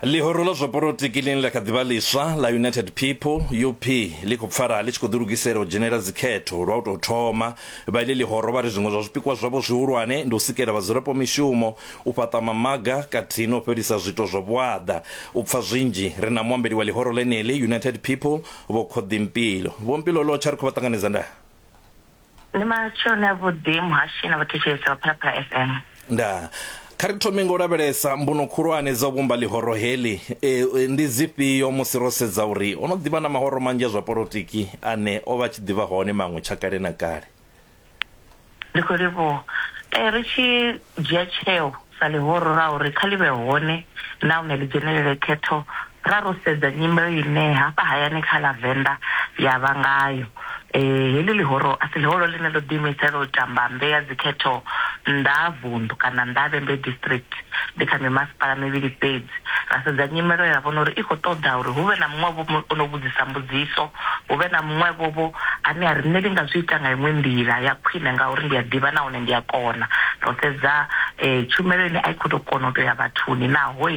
Ḽihoro ḽa zwa polotiki ḽine ḽa kha ḓi vha ḽiswa ḽa United People, UP, ḽi khou pfala ḽi tshi khou ḓilugisela u dzhenela dzikhetho lwa u tou thoma. Vha iḽi ḽihoro vha ri zwiṅwe zwa zwipikwa zwavho zwihulwane ndi u sikela vhadzulapo mishumo, u fhaṱa mamaga khathihi na u fhelisa zwiito zwa vhuaḓa. U pfa zwinzhi, ri na muambeli wa ḽihoro ḽeneḽi, United People, Vho Khoḓi Mpilo. Vho Mpilo, ḽo tsha ri khou vha ṱanganedza ndaa. Ndi matsheloni a vhuḓi muhashi na vhathetshelesi vha Phalaphala FM. Ndaa. Kha ri thome nga u lavhelesa mbuno khulwane dza u vhumba ḽihoro heḽi. E, e, ndi dzifhio musi ro sedza uri ho no ḓivha na mahoro manzhi a zwa polotiki ane o vha a tshi ḓivha hone maṅwe tsha kale na kale? Ndi khou livhuwa. E, ri tshi U dzhia tsheo sa ḽihoro ḽa uri kha ḽi vhe hone nahone ḽi dzhenelele khetho ra ro sedza nyimelo ine hafha hayani kha ḽa Venḓa ya vha ngayo. Heḽi ḽihoro a si ḽihoro ḽine ḽo ḓiimisela u tamba mmbe ya dzikhetho nnḓa ha vunḓu kana nnḓa ha Vhembe District. Ndi kha mimasipala mivhili fhedzi. Ra sedza nyimelo ra vhona uri i khou ṱoḓa uri hu vhe na muṅwe-vho o no vhudzisa mbudziso hu vhe na muṅwevho-vho ane a ri, Nṋe ndi nga zwi ita nga iṅwe nḓila ya khwine ngauri ndi a ḓivha nahone ndi a kona. Ro sedza tshumelo ine a i khou tou kona u tou ya vhathuni, naho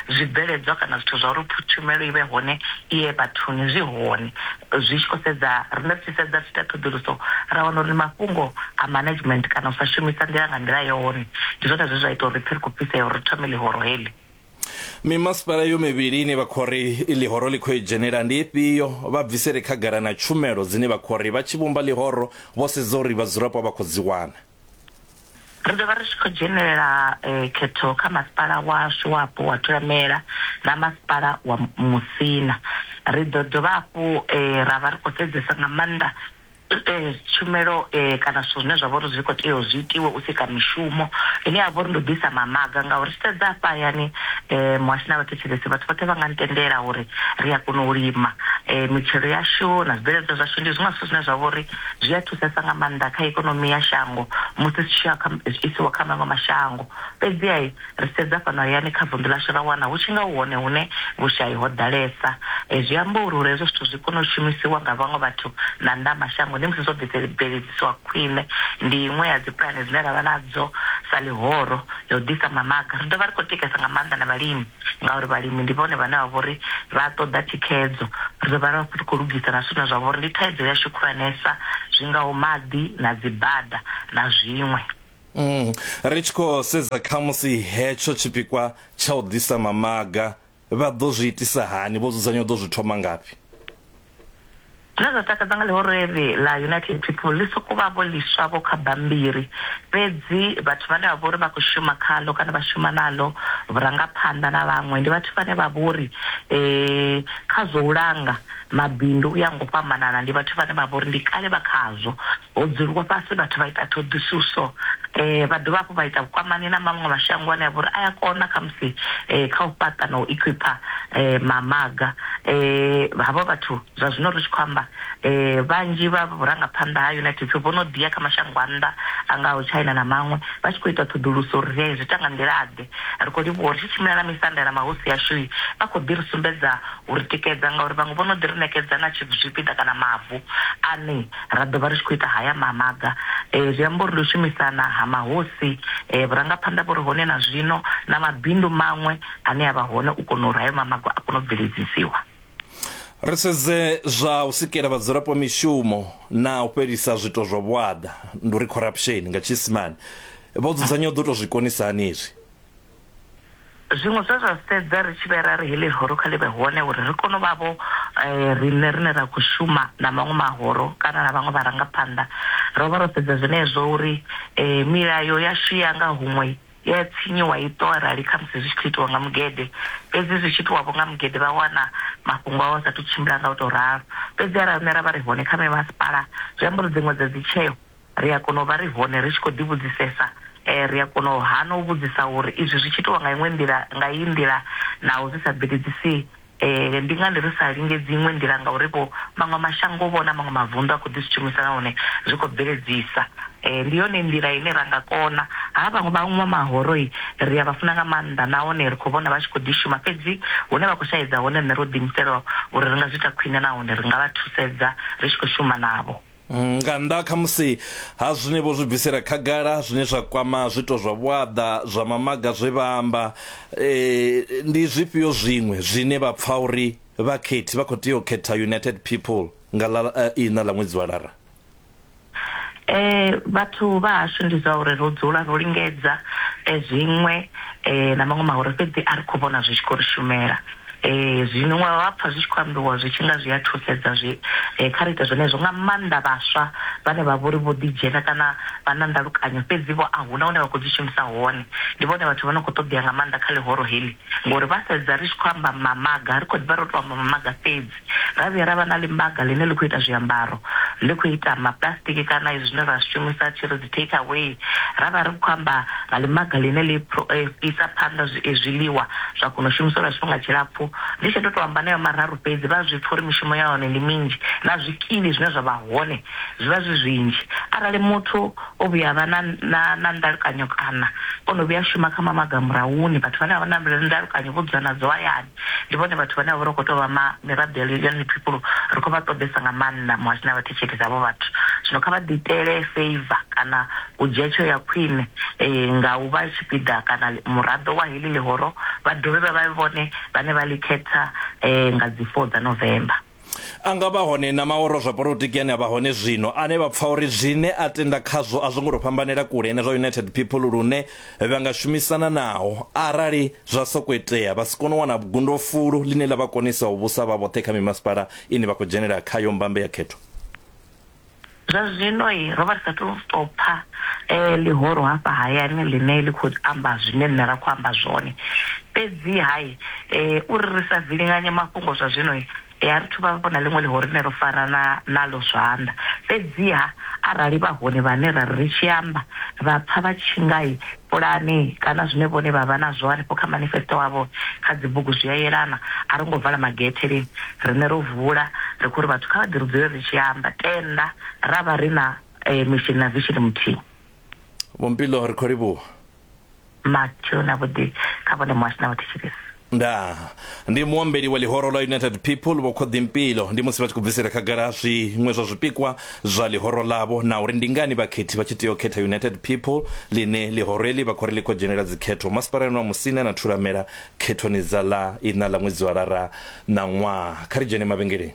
zwibveledzwa kana zwithu zwa uri tshumelo i vhe hone i ye vhathuni zwi hone. Zwi tshi khou sedza, riṋe ri tshi sedza, ri tshi ita ṱhoḓuluso ra wana uri mafhungo a management kana u sa shumisa nḓila nga nḓila yone ndi zwone zwe zwa ita uri ri pfe ri khou fhisea uri ri thome ḽihoro heḽi. Mimasipala yo mivhili ine vha khou ri ḽihoro ḽi khou i dzhenela ndi ifhio? Vha bvisele khagala na tshumelo dzine vha khou ri vha tshi vhumba ḽihoro vho sedza uri vhadzulapo vha khou dzi wana. Ri ḓo vha ri tshi khou dzhenela khetho kha masipala washu wapo wa Thulamela na masipala wa Musina. Ri ḓo dovha hafhu ra vha ri khou sedzesa nga maanḓa tshumelo kana zwithu zwine zwa vha uri zwi kho tea u zwi itiwe u sika mishumo ine ya vha uri ndi u ḓisa mamaga ngauri ri sedza hafha hayani muhasho na vhathetshelesi vhathu vhoṱhe vha nga ni tendela uri ri a kona u lima mitshelo yashu na zwibveledzwa zwashu ndi zwiṅwe zwithu zwine zwa vha uri zwi a thusesa nga maanḓa kha ikonomi ya shango musi zwi tshi isiwa kha maṅwe mashango fhedziha Ri tshi sedza fhano hayani kha vunḓu ḽashu ra wana hu tshi nga hu hone hune vhushai ho ḓalesa. Zwi amba uri uri hezwo zwithu zwi kone u shumisiwa nga vhaṅwe vhathu na nnḓa ha mashango ndi musi zwo bveledziswa khwine. Ndi iṅwe ya dzipulane dzine ra vha nadzo sa ḽihoro ya u ḓisa mamaga. Ri dovha ri khou tikesa nga maanḓa na vhalimi ngauri vhalimi ndi vhone vhane vha vha uri vha ṱoḓa thikhedzo. Ri ḓo vha ri vha ri khou lugisa na zwithu zwine zwa vha uri ndi thaidzo yashu khulwanesa zwi ngaho maḓi na dzibada na zwiṅwe. Mm, ri tshi khou sedza kha musi hetsho tshipikwa tsha u ḓisa mamaga vha ḓo zwi itisa hani vho dzudzanya u ḓo zwi thoma ngafhi zwine zwa takadza nga ḽihoro eḽi ḽa united people ḽi sokou vha vho ḽiswa vho kha bambiri fhedzi vhathu vhane vha vha uri vha khou shuma khaḽo kana vha shuma naḽo vhurangaphanḓa na vhaṅwe ndi vhathu vhane vha vha uri um kha zwa u langa Mabindu u ya nga u fhambanana ndi vhathu vhane vha vha uri ndi kale vha khazwo. Ho dzuliwa fhasi vhathu vha ita ṱhoḓisuso vha dovha hafhu vha ita vhukwamani na maṅwe mashango ane a vha uri a ya kona khamusi kha u fhaṱa na u equipper mamaga. Havho vhathu zwa zwino ri tshi khou amba vhanzhi vha vhurangaphanḓa ha United States vho no ḓi ya kha mashango a nnḓa a ngaho China na maṅwe vha tshi khou ita ṱhoḓuluso uri ri zwi ita nga nḓila ḓe. Ri khou livhuwa uri ri tshi tshimbila na misanda na mahosi ashu vha khou ḓi ri sumbedza u ri tikedza ngauri vhaṅwe vho no ḓi ri ṋekedza na zwipiḓa kana mavu ane ra ḓo vha ri tshi khou ita haya mamaga. Zwi amba uri ndi u shumisana ha mahosi, vhurangaphanḓa vhu re hone na zwino na mabindu maṅwe ane a vha hone u kona uri hayo mamaga a kone u bveledzisiwa. Ri sedze zwa u sikela vhadzulapo mishumo na u fhelisa zwiito zwa vhuaḓa, ndi uri corruption nga Tshiisimane. Vho dzudzanya u ḓo tou zwi konisa hani hezwi? Zwiṅwe zwe zwa sedza ri tshi vhe ra ri heḽi ḽihoro kha ḽi vhe hone uri ri kone u vha vho riṋe rine ra khou shuma na maṅwe mahoro kana na vhaṅwe vharangaphanḓa, ro vha ro sedza zwenezwo uri milayo yashu ya nga huṅwe i ya tshinyiwa i ṱo arali khamusi zwi tshi khou itiwa nga mugede, fhedzi zwi tshi itiwa vho nga mugede vha wana mafhungo avho a sa athu tshimbila nga u tou ralo. Fhedzi arali riṋe ra vha ri hone kha mimasipala zwi amba uri dziṅwe dza dzi tsheo Ri a kona u vha ri hone ri tshi khou ḓivhudzisesa. Ri a kona u hana u vhudzisa uri, Izwi zwi tshi itiwa nga iṅwe nḓila, nga iyi nḓila, naho zwi sa bveledzisi, ndi ngani ri sa lingedzi iṅwe nḓila? Ngaurivho, maṅwe mashango-vho na maṅwe mavunḓu a khou ḓi zwi shumisa nahone zwi khou bveledzisa. Ndi yone nḓila ine ra nga kona. Ha vhaṅwe vha vha mahoro-i, ri a vha funa nga maanḓa nahone ri khou vhona vha tshi khou ḓi shuma. Fhedzi hune vha khou shaedza hone, riṋe ro ḓiimisela uri ri nga zwi ita khwine nahone ri nga vha thusedza ri tshi khou shuma navho. Nga nnḓa kha musi ha zwine vho zwi bvisela khagala zwine zwa kwama zwito zwa vhuaḓa zwa mamaga zwe vha amba, eh, ndi zwifhio zwiṅwe zwine vha pfa uri vhakhethi vha khou tea u khetha United People nga ḽa eh, ina ḽa ṅwedzi wa Lara? Eh, vhathu vha hashu ndi zwa uri ro dzula ro lingedza eh, zwiṅwe eh, na maṅwe mahure fhedzi a ri khou vhona zwi tshi khou ri shumela. Eh, zwino wa vha pfa zwi tshi khou ambiwa zwi tshi nga zwi a thusedza zwi eh, kha ri ite zwenezwo nga maanḓa vhaswa vhane vha vhori vho ḓidzhena kana vha na ndalukanyo fhedzi vho a huna hune vha khou dzi shumisa hone ndi vhone vhathu vha no khou ṱoḓea nga maanḓa kha ḽihoro heḽi ngori vha sedza ri tshi khou amba mamaga ri khou ḓivha ro to amba mamaga fhedzi ra vhuya ra vha na ḽimaga ḽine ḽi khou ita zwiambaro, ḽi khou ita mapuḽasitiki kana izwi zwine ra zwi shumisa tshi ri dzi take away. Ra vha ri khou amba nga ḽimaga ḽine ḽi isa phanḓa zwiḽiwa zwa kona u shumiswa lwa tshifhinga tshilapfu. Ndi tshi ḓo tou amba haneyo mararu fhedzi, vha a zwi pfa uri mishumo ya hone ndi minzhi na zwikili zwine zwa vha hone zwi vha zwi zwinzhi. Arali muthu o vhuya a vha na na na ndalukanyo kana o no vhuya a shuma kha mamaga a murahuni, vhathu vhane vha vha na ndalukanyo vho dzula nadzo hayani. Ndi vhone vhathu vhane vha vha uri hu khou tou vha ma miraḓo ya ya ḽiphiphulo ri khou vha ṱoḓesa nga maanḓa muhasho na vhathetshelesi havho vhathu zwino kha vha ḓi itele favour kana u dzhia tsheo ya khwine nga u vha tshipiḓa kana muraḓo wa heḽi ḽihoro vha dovhe vha vhe vhone vhane vha ḽi khetha nga dzi four dza November. A nga vha hone na maoro zwa polotiki ane a vha hone zwino ane vha pfa uri zwine a tenda khazwo a zwo ngo tou fhambanela kule na zwa United People lune vha nga shumisana naho arali zwa sokou itea vha si kone u wana gundofulu ḽine ḽa vha konisa u vhusa vha vhoṱhe kha mimasipala ine vha khou dzhenela khayo mbambe ya khetho. Zwa zwino ro vha ri sa tou tou pfa ḽihoro hafha hayani ḽine ḽi khou amba zwine nṋe ra khou amba zwone. Fhedzi-ha uri ri sa vilinganye mafhungo zwa zwino, a ri thu vha vho na ḽiṅwe ḽihoro ḽine ro farana naḽo zwanḓa. Fhedzi-ha arali vha hone vhane ra ri ri tshi amba vha pfa vha tshi nga pulane kana zwine vhone vha vha nazwo hanefho kha manifesto wavho kha dzibugu zwi a yelana. A ro ngo vala magethe lini, riṋe ro vula ri khou ri vhathu kha vha ḓi ri dzule ri tshi amba, tenda ra vha ri na mishini na vishini muthihi. Vho Mpilo ri khou livhuwa. Mathewu na vhuḓi kha vhone muhasho na vhathetshelesi. ndaa ndi muambeli wa ḽihoro ḽa united people vho khoḓi mpilo ndi musi vha tshi khou bvisela khagala zwiṅwe zwa zwipikwa zwa ḽihoro ḽavho na uri ndi ngani vhakhethi vha tshi tea u khetha united people ḽine ḽihoro eḽi vha khou ri ḽi khou dzhenela dzikhetho masipalani wa musina na thulamela khethoni dza ḽa iṋa ḽa ṅwedzi wa lara ṋaṅwaha kha ri dzhene mavhengeleni